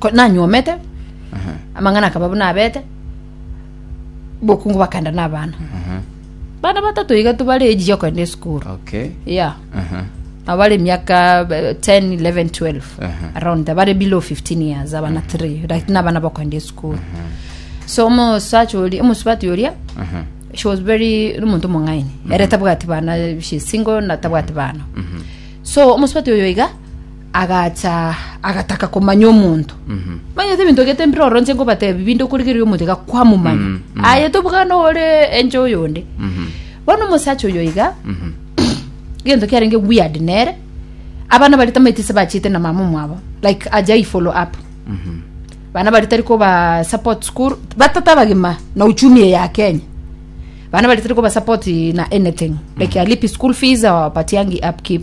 ko- nanyuomete amang'ana akaba buna abete bokungu bakenda na abana bana batato iga tobare eji yokoenda esukuru okay ya Aha. abare emiaka eh, 10 11 12 Aha. around there, bare below 15 years abana 3 like nabana bakoenda esukuru so omosacha oria omosubati oria Aha. she was very ri omonto omong'aini ere tabwati bana she single na tabwati bana so omosubati oyo iga agacha agataka komanya omonto manyete ebinto gete mpira oro nche nkobatebi binde okorigereria omotega kwamomanya Mm, mm. aye tobugana ore enche oyonde Mhm. bono omosacha oyo iga Mhm. gento kiarenge weird nere abana bari tamaiti se bachete na mama mwabo like aja i follow up Mhm. bana bari tari koba support school batata bagima na uchumi eye ya kenya bana bari tari koba support na anything like alipi school fees or patiangi upkeep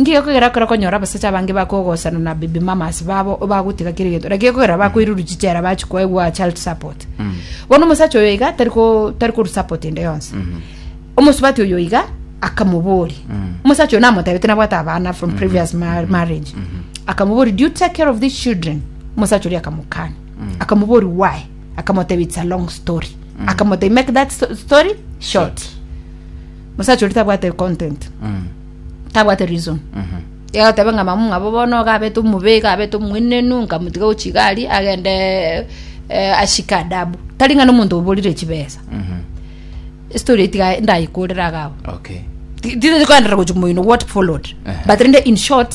Ngiya kogera ekero okonyora abasacha abange bakogosana na baby mamas babo bagotiga kera egento lakini kogera bakoiruru chichera bachi koegwa child support bono omosacha oyo iga tari ko- tari korwa support ende yonsi omosubati oyo iga akamobori omosacha oyo namotebete nabwate abana from previous ma- marriage akamobori do you take care of these children omosacha oria akamokania akamobori why akamotebi it's a long story akamotebi make that sto- story short Omosacha oria tabwate content. Tabwate reason. Iga goteba ng'a mama mwabo bono iga abete omobe, iga abete omoenenu, nkamotiga gochigari agende eh, ashike adabu. Tari ng'a nomonto oborire chibesa. Estory eye tiga ndayekorere agao. Okay. Ti- Tiri koenderera gochia moino what followed. Aha. But rende in short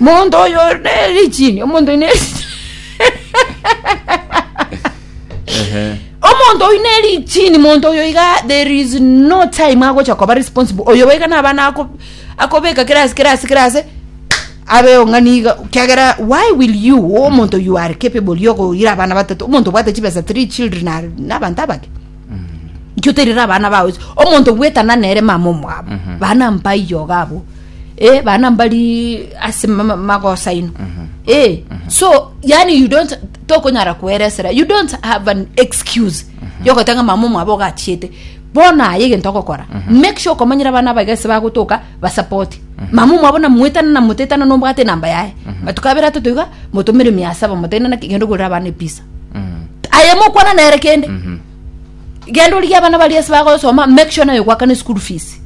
Monto oyo ore ne richini, omonto oyo ne Ehe. omonto oyo ne richini, monto oyo iga there is no time agocha koba responsible. Oyo boiga naba nako akobeka kera ase kera ase kera ase abeo ng'ani iga kiagera why will you omonto you are capable yokoira abana batato omonto obwate chibesa three children are nabanto abake nki oterire abana bao omonto gwetana nere mama omwabo bana mpaiyo iga abwo eh, bana mbari ase ma- ma- magosa ino eh, so yani you don't tokonyara kweresera you don't have an excuse yogotanga mama mwabo ogachiete bona aye egento ogokora make sure okomanyira abana abaiga ase bagotoka basapoti mama mwabo namuetana namutetana nombwate enamba yaye matukabera totoiga motomere mia saba motene naki genda ogorera abana episa aye mokwana nere kende genda origia abana bari ase bagosoma make sure nayo gwakana school fees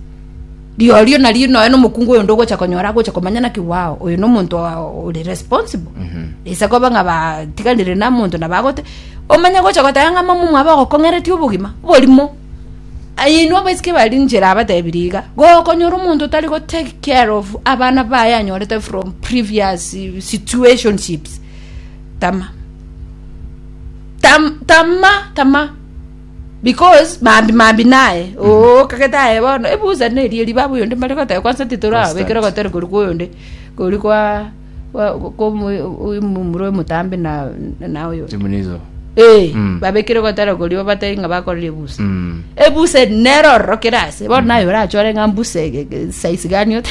Riorio nario nonya nomokungu oyonde ogocha konyora agocha komanya naki wao oyo nomonto ore responsible ase koba ng'a batiganire na monto na bagote omanye gocha goteba ng'a mama omwabo ogokong'eretie obogima borimo aye inwe abaiseke bare inche nabatebirie iga gokonyora omonto otari go take care of abana baye anyorete from previous situationships tama tam tama tama Because mambi mambi naye oo kagete aye bono ebusa neri eriba abwo yonde mbare goteba kwanza titoro Constant. abekere gotera kori kwa oyonde kori kwa kwa- kwa omo- omomura omotambe na na oyo Chimunizo. eh Mm. babekire gotera kori obatari ng'a bakorire ebusa Mm. ebusa eri nero ororokere ase bono naye orachore ng'a mbusa ege- ege- size gani ote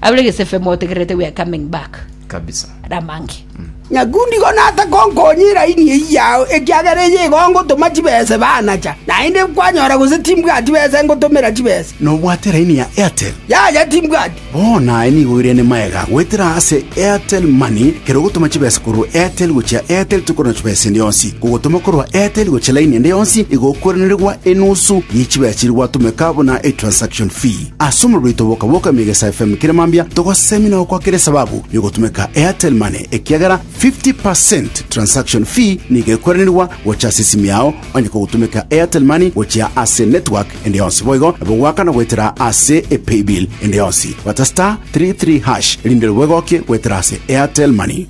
Abure gesefe motegererete we are coming back Kabisa. Ramange. Nyakundi igo natakonkonya eraini eyio yao, ekiagera eyio igo ngotoma chibesa ebe anacha. Naende kwanyora gose timbwati besa ngotomera chibesa. Nobwate raini ya Airtel? Yaya timbwati. Bono aye nigo oirene magega goetera ase Airtel Money kero ogotoma chibesa korwa Airtel gochia Airtel tokorora chibesa ende yonsi. Kogotoma korwa Airtel gochia laini ende yonsi igo okoiranerigwa enusu ye chibesa chiria gwatomeka buna etransaction fee. Ase omobere oito boka bwoka Emegesa FM kera mambia togosemina gokwakera esababu yogotumeka Airtel Money ekiagera 50% transaction fee nigo ekweranirwa gocha ase esimi yao onye kogotumeka Airtel Money gochia ase network ende yonsi boigo nabo gwakana goetera ase e paybill ende yonsi gwata star 33 hash erinde rwo egokie goetera ase Airtel Money.